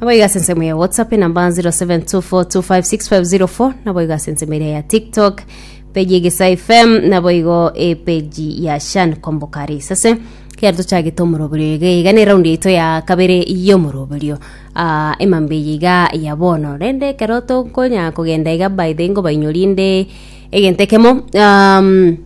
naboigo ase ensemo ya whatsapp enamba 0724256504 naboigo ase ensemo eria ya tiktok peji egesa fm naboigo epeji ya shan kombokare isase kiaro tochagete omoroberio iga iga ne raundi yaito ya kabere y'omoroberio Ah, emambe eye iga ya bono rende ekero tokonya kogenda iga by the ngobainyorie nde egento ekemo um,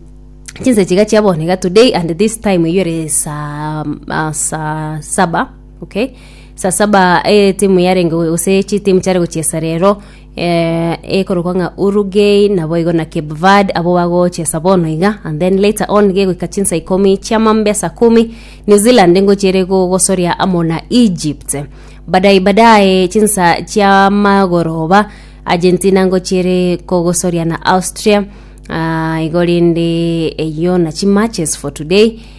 chinsa chiga chia bono iga today and this time eywo ere saa ah, saa saba Okay. Saa saba eh, timu yarenge gose chitimu chiare gochiesa rero eh, ekorokwa ng'a Uruguay nabo igo na Cape Verde abo bagochiesa bono iga and then later on gegoika chinsa ikomi chia mambe saa kumi New Zealand ngochiere go- gosoria amo na Egypt badai badai chinsa chia magoroba Argentina ngochiere kogosoria na Austria Ah, igo rende eyio na chimatches for today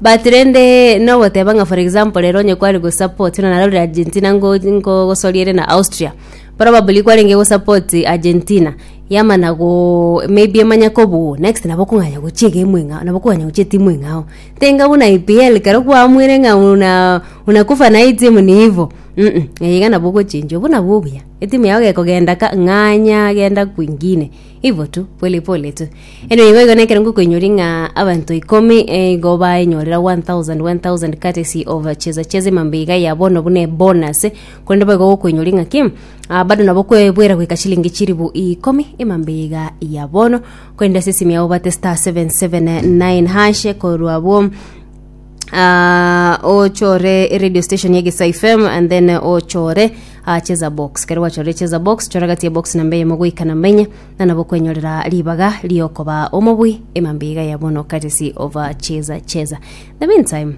But rende nogoteba ng'a for example ere onye kware gosupport buna narorire Argentina ngo ngogosoria ere na Austria probably kwarenge gosupport Argentina yamana go maybe emanya kobuu next nabo okong'anya gochia egemu eng'ao nabo okong'anya gochia etimu eng'ao tenga buna EPL ekero kwaamwire ng'a una unakufa na hii timu ni hivo mmh eye iga nabo ogochenchwa buna bobuya etimu yao gekogenda ka ng'anya genda kwingine. Ibo tu, pole pole tu. Eno igo igo nekerengo koinyori ng'a abanto ikomi eh, igo baenyorera 1000 1000 courtesy of cheza cheza emambe iga ya bono buna bonus korende boigo gokoinyori ng'a ki ah, bado nabo kwebwera goika chilingi chiribu ikomi emambe iga ya bono korende ase esimi yao bate star 779 hashe korwa bwo Ah, ochore radio station ya gesa fm and then eh, ochore ah, cheza box kero gwachorire cheza box chora gati ya box namba eyemo goika namba enye na nabo kwenyorera ribaga riokoba omobui emambiga ya bono courtesy of ah, cheza cheza the meantime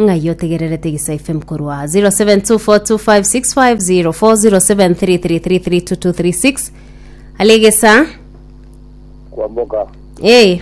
ng'ai otegererete gesa fm korwa 0724256504 alegesa kwamboka ee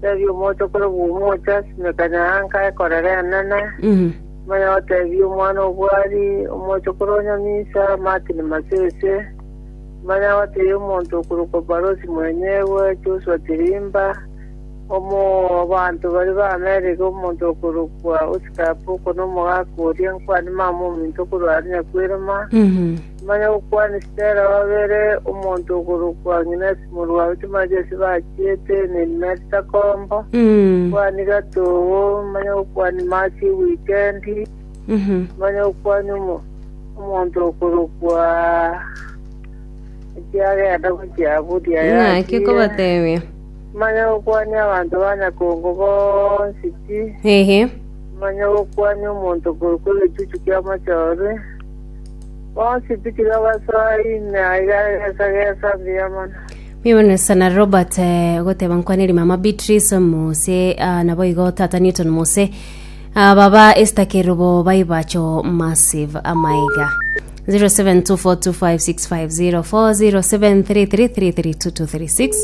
Tebia omoche okore bw'omoche ase emekanya ya nka ekorere enene, manya otebie omwana obwari, omoche okore onyamisa, Martin Masese, manya otebie omonto okorokwa Barosi Mwenyegwe, Joshua Chirimba, omo abanto baria ba America omonto okorokwa Oscar Apoko na omogaka oria nkwani mama ominto okorwa are Nyakwirima, Manya gokwana Stella obeire omonto okorokwa Agnes morwa oito mache ase bachiete Neimet Takombo kwani gatogo manya gokwani Mercy Wikendi manya gokwani omo- omonto okorokwa ekiagenda gochia buri aya ng'aki achiire. okobatebia manya gokwani abanto ba Nyakongo bonsi ti ehe manya gokwani omonto okorokwa egechuchu kia mochorwe Bonsi tikiri ogasoa ime aiga egesa gesa mbuya mono. Mimano sana Robert eh, goteba nkwaneri mama Beatrice Mose ah, nabo igo tata Newton Mose ah, baba Esther Kerubo baibacho massive amaiga 07242565040733332236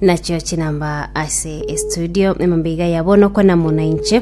nachio chinamba ase estudio emambe iga yabo nokwana muna inche